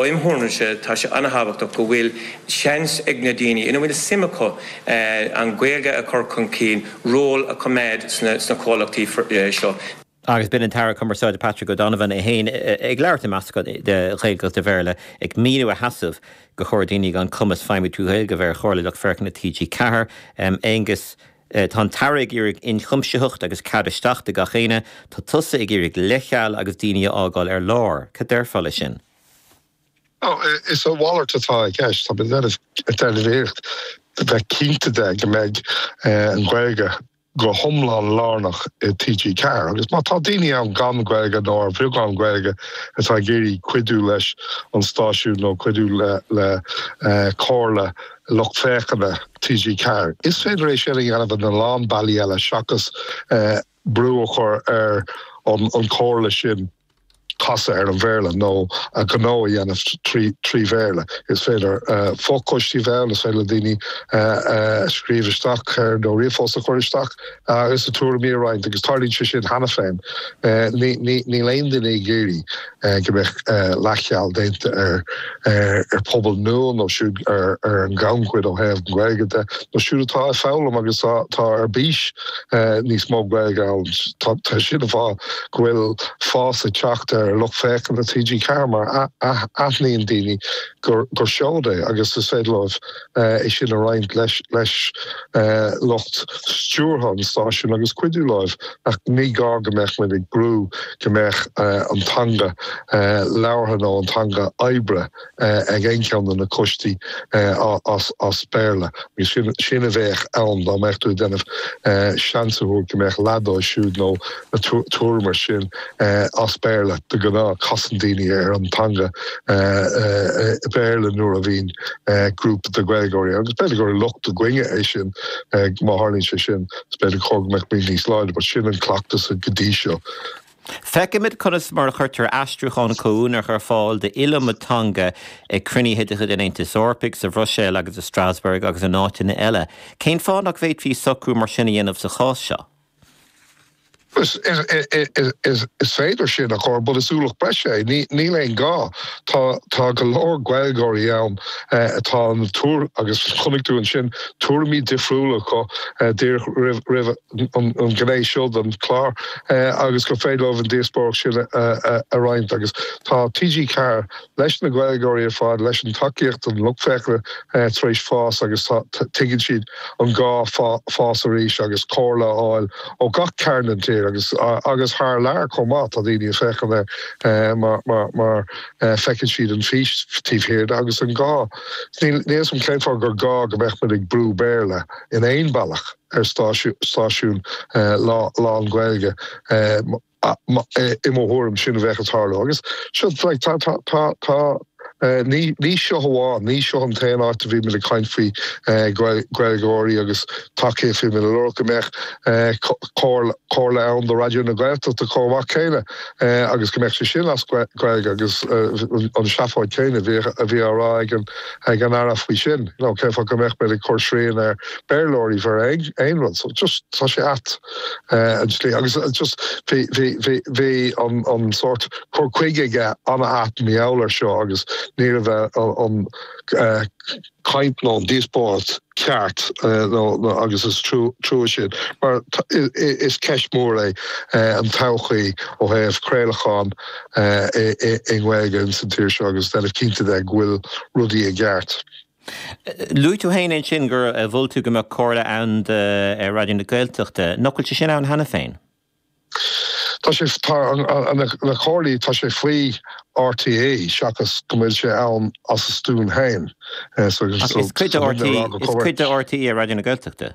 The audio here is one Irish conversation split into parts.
Im' thuairimse, tá sé an-thábhachtach go bhfuil seans ag na daoine ina bhfuil suim acu an Ghaeilge a chur chun cinn ról a choimeád sna comhlachtaí seo. Agus b'in an tAire Cumarsáide Patrick O'Donovan é féin ag labhairt i meascán de Ghaeilge agus de Bhéarla ag míniú a sheasamh gur chóir daoine gan cumas feidhmiú trí Ghaeilge a bheith ar Chomhairle Lucht Féachana TG4. Aengus. Tá an tAire ag iarraidh inchuimsitheacht agus cead isteach do gach éinne. Tá tusa ag iarraidh leithcheal agus daoine a fhágáil ar lár. Cad déarfá leis sin? Is a mhalairt atá i gceist. Tá mé ag déanamh iarracht bheith cinnte de go mbeidh an Ghaeilge go hiomlán lárnach i TG4. Agus má tá daoine ann gan Gaeilge nó ar bheagán Gaeilge atá ag iarraidh cuidiú leis an stáisiún nó cuidiú le Comhairle na. lucht féachana TG Ceathair. Is féidir é sin a dhéanamh in a lán bealaí eile seachas brú a chur ar an chomhairle sin casadh ar an Bhéarla nó a ngnó a dhéanamh trí Bhéarla. Is féidir fo-choistí a bheith ann, is féidir le daoine scríobh isteach nó ríomhphost a chur isteach agus a tuairimí a roinnt agus tarlaíonn sé sin cheana féin. Níl aon duine ag iarraidh. go mbeadh leathcheal déanta ar phobal nua nó siúd ar an ghannchuid ó thaobh na Gaeilge de nó siúd atá ag foghlaim agus atá ar bís níos mó Gaeilge a fhoghlaim. Tá sé iontach go bhfuil fás ag teacht ar lucht féachana TG4 mar aithníonn daoine gur seoid é agus is féidir leo é sin a roinnt leis lucht stiúrtha an stáisiúin agus cuidiú leo, ach ní gá go mbeadh muid ag brú go mbeadh an teanga labhartha nó an teanga oibre ag aon cheann de na coistí as Béarla. Agus sin a bheadh ann dá mbeadh tú ag déanamh seans a thabhairt go mbeadh leath dóibh siúd nó tuairim ar sin as Béarla. De ghnáth, casann daoine ar an teanga Bhéarla nuair a bhíonn grúpa de Ghaeilgeoirí, agus b'fhéidir gur locht orainne é sin, má tharlaíonn sé sin, is b'fhéidir gur cóir go mbeadh muid níos láidre, but sin an cleachtas go dtí seo. Feicimid conas mar a chuirtear aistriúchán comhuaineach ar fáil d'iliomad teanga ag cruinnithe de chuid an Aontais Eorpaigh, sa Bhruiséil agus i Strasbourg agus in áiteanna eile. Cén fáth nach bhféadfaí socrú mar sin a dhéanamh sa chás seo? Is féidir sin, a chur, but is ualach breise é. Níl aon ghá. Tá, tá go leor Gaeilgeoirí ann atá an tuair agus chonaic tú ansin tuairimí difriúla acu díreach roimh an ghné seo den chlár agus gur féidir leo an díospóireacht sin a roinnt agus tá TG4 leis na Gaeilgeoirí ar fad, tá an tacaíocht ón lucht féachana tar éis fás agus tuigeann siad an gá fás arís agus comhairle a fháil ó gach cearn den tír agus agus thar lear chomh maith. Tá daoine ag féachaint air mar mar mar feiceann siad an fhís taobh thiar de agus an gá. Níl níl fhios agam cén fáth gur gá go mbeadh muid ag brú Béarla in aon bealach ar stáisiún stáisiún lán-Ghaeilge. I mo thuairim, sin a bheadh ag tarlú. Agus sea, ní seo amháin, ní seo an t-aon áit a bhí muid ag caint faoi Ghaeilgeoirí agus TG4. Bhí muid ag lorg go mbeadh comhairle ann do Raidió na Gaeltachta chomh maith céanna agus go mbeadh sé sin as Gaeilge agus an seafóid céanna a bhí á rá ag an Aire faoi sin, cén fáth go mbeadh muid ag cur srian ar Bhéarlóirí bheith ar aon rud. So tá sé ait. eh, an tslí agus eh, just bhí bhí bhí bhí an an sort cur chuige aige an-ait mar gheall ar seo agus ní raibh eh, an an eh, caint nó an díospóireacht ceart eh, nó nó agus is trua trua sin mar t- i- i- is ceist mór é eh, an todhchaí ó thaobh craolachán eh, i i- i nGaeilge in san tír seo agus déanamh cinnte de go bhfuil rudaí i gceart. Luaigh tú féin ansin gur mhol tú go mbeadh comhairle ann do Raidió na Gaeltachta. Nach bhfuil sé sin ann cheana féin? Tá sé, tá na comhairlí, tá sé faoi RTÉ seachas go bhfuil sé ann as a stuaim féin. Is cuid de RTÉ Raidió na Gaeltachta.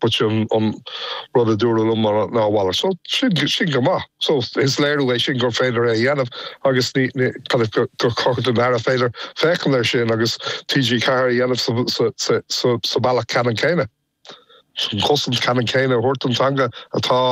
Bhuel sin an rud a dúradh liom maidir lena mhalairt. So, sin go maith. So, is léiriú é sin gur féidir é a dhéanamh agus kind of gur cóir don Aire féidir féachaint air sin agus TG4 a dhéanamh sa bhealach ceannann céanna. An chosaint ceannann céanna a thabhairt don teanga atá